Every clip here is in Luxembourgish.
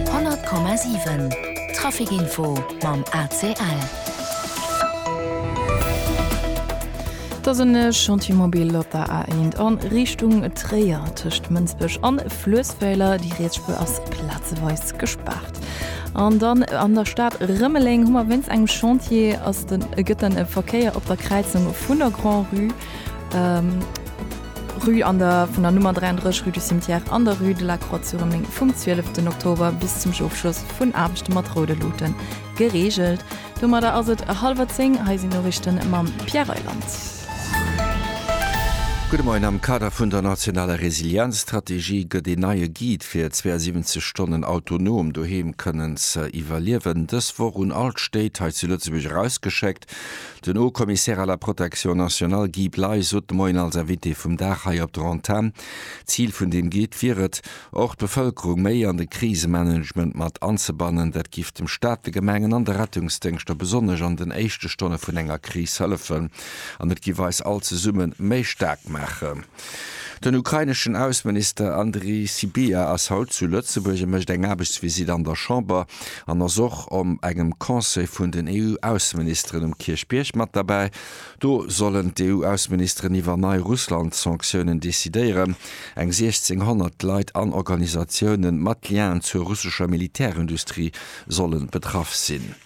100,7 Traficinfo mam ACL. Et ass en Chantiermobil op der A1 a Richtung Tréier. Tëscht Mënsbech an Fluessweiler, déi Rietsspuer ass plazeweis gespaart. An dann an der Stad Rëmeleng hu mer wéinst engem Chantier ass den, gëtt den Verkéier op der Kräizung vun der Grand-Rue, Rue an der vun der Nummer 33 Rue du Cimetière an der Rue de la Croix-sur-Rëmeleng vum 12 den Oktober bis zum Ofschloss vun Aarbechte mat roude Luten gereegelt. Domadder ass et hallwer 10, hei sinn d'Noriichte mam Pierre Reyland. Gudde Moien, Am Kader vun der nationaler Resilienzstrategie gëtt een neie Guide fir 72 Stonnen autonom doheem kënnen ze iwwerliewen dës Woch un all d'Stéit hei zu Lëtzebuerg erausgeschéckt. Den Haut-Commissaire à la Protection nationale Guy Bley sot de Moien als Invité vum Dag hei op der Antenn. D'Zil vun deem Guide wier et, och d'Bevëlkerung méi an de Krisemanagement mat anzebannen. Dat giff dem Staat, de Gemengen an de Rettungsdéngschter besonnesch an den éischte Stonne vun enger Kris hëllefen an et giff eis all zesumme méi staark maachen. Den ukraineschen Ausseminister Andrii Sybiha ass haut zu Lëtzebuerg a mécht eng Aarbechtsvisitt an der Chamber an ass och om engem Conseil vun den EU-Ausseministeren um Kierchbierg mat derbäi. Do sollen d'EU-Ausseministeren iwwer nei Russland-Sanktiounen decidéieren. Eng 1.600 Leit an Organisatiounen mat Lien zur russescher Militärindustrie sollen betraff sinn.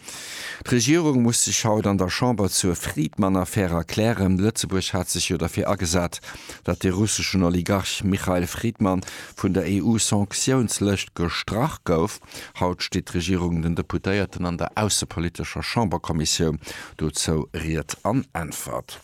D'Regierung muss sech haut an der Chamber zur Friedmann-Affär erklären. Lëtzebuerg hat sech jo derfir agesat, datt de russeschen Oligarch Michail Friedmann vun der EU-Sanktiounslëscht gestrach gouf. Haut steet d'Regierung den Deputéierten an der aussepolitescher Chamberkommissioun dozou Ried an Äntwert.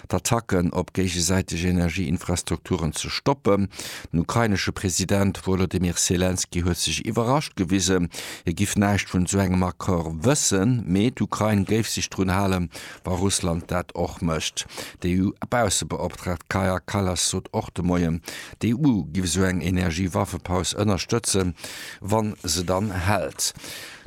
d'Attacken op géigesäiteg Energieinfrastrukturen ze stoppen. Den ukrainesche President Wolodymyr Selenskyj huet sech iwwerrascht gewisen, hie giff näischt vun esou engem Accord wëssen, mee d'Ukrain géif sech drun halen, wa Russland dat och mécht. D'EU-Baussebeoptraagt Kaja Kallas sot och de Moien, d'EU giff esou eng Energiewaffepaus ënnerstëtzen, wa se dann hält.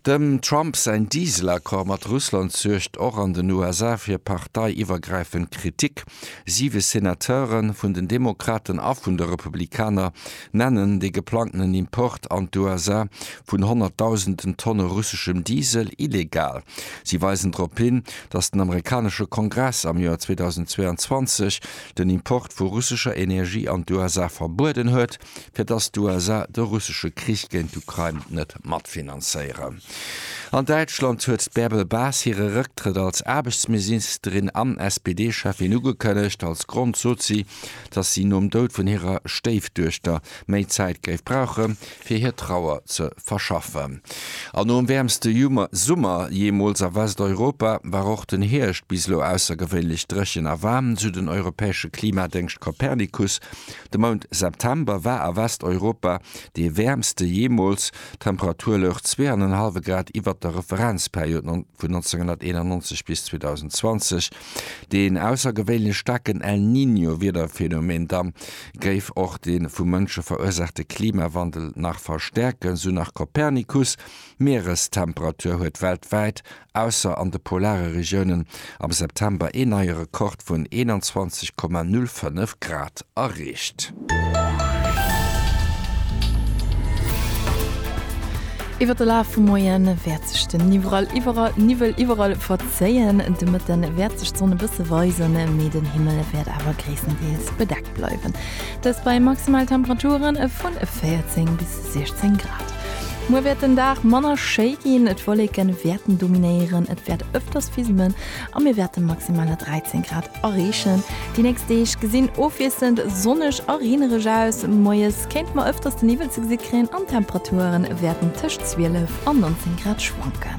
Dem Trump säin Diesel-Accord mat Russland suergt och an den USA fir parteiiwwergräifend Kritik. Siwe Senateure vun den Demokraten a vun de Republikaner nennen de geplangtenen Import an d'USA vun honnertdausenden Tonne russeschem Diesel illegal. Si weisen drop hin, datt den amerikanesche Kongress am Joer 2022 den Import vu russescher Energie an d'USA verbueden huet, fir dass d'USA de russesche Krich géint d'Ukrain net matfinanzéieren. An Däitschland huet d'Bärbel Bas hire Rëcktrëtt als Aarbechtsmisinsterin an SPD-Cheffin ugekënnegt. Als Grond sot si, dass si nom Doud vun hirer Stéifduechter méi Zäit géif brauche fir hir Trauer ze verschaffen. An nom wäermste Summer jeemools a Westeuropa war och den Hierscht bis elo aussergewéinlech dréchen a waarm. Südeneuropäesche Klimadéngscht Copernicus De Mount September war a Westeuropa dee wäermste jeemools, d'Temperatur louch zwee an en hallwe Grad iwwert der Referenzperiod vun 1991 bis 2020. Deen aussergewéinlech staarken El Niño-Wiederphänomen dann géif och de vu Mënsche verursaachte Klimawandel nach verstäerken, sou nach Copernicus. D'Mierestemperatur huet weltwäit ausser an de polare Regiounen, am September een neie Rekord vun 21,05 Grad erreecht. Iwwer de Laf vum Moie wäert sech den Niwwel iwwerall verzéien. De Mëtte wäert sech d'Sonn e bësse weisen, mee den Himmel wäert awer gréisstendeels bedeckt bleiwen. Dëst bei maximale Temperature vu 14 bis 16 Grad. Muer wäert den Dag manner schéi ginn, et Wolleke wäerten dominéieren, et wäert ëfters fismen a mir wäerte maximaler 13 Grad erreechen. Déi nächst Deeg gesinn ofwiesselnd sonneg a reenereg aus, moies kéinte mer ëfters de Niwwel ze gesi kréien an d'Temperature wäerten tëscht 12 an 19 Grad schwanken.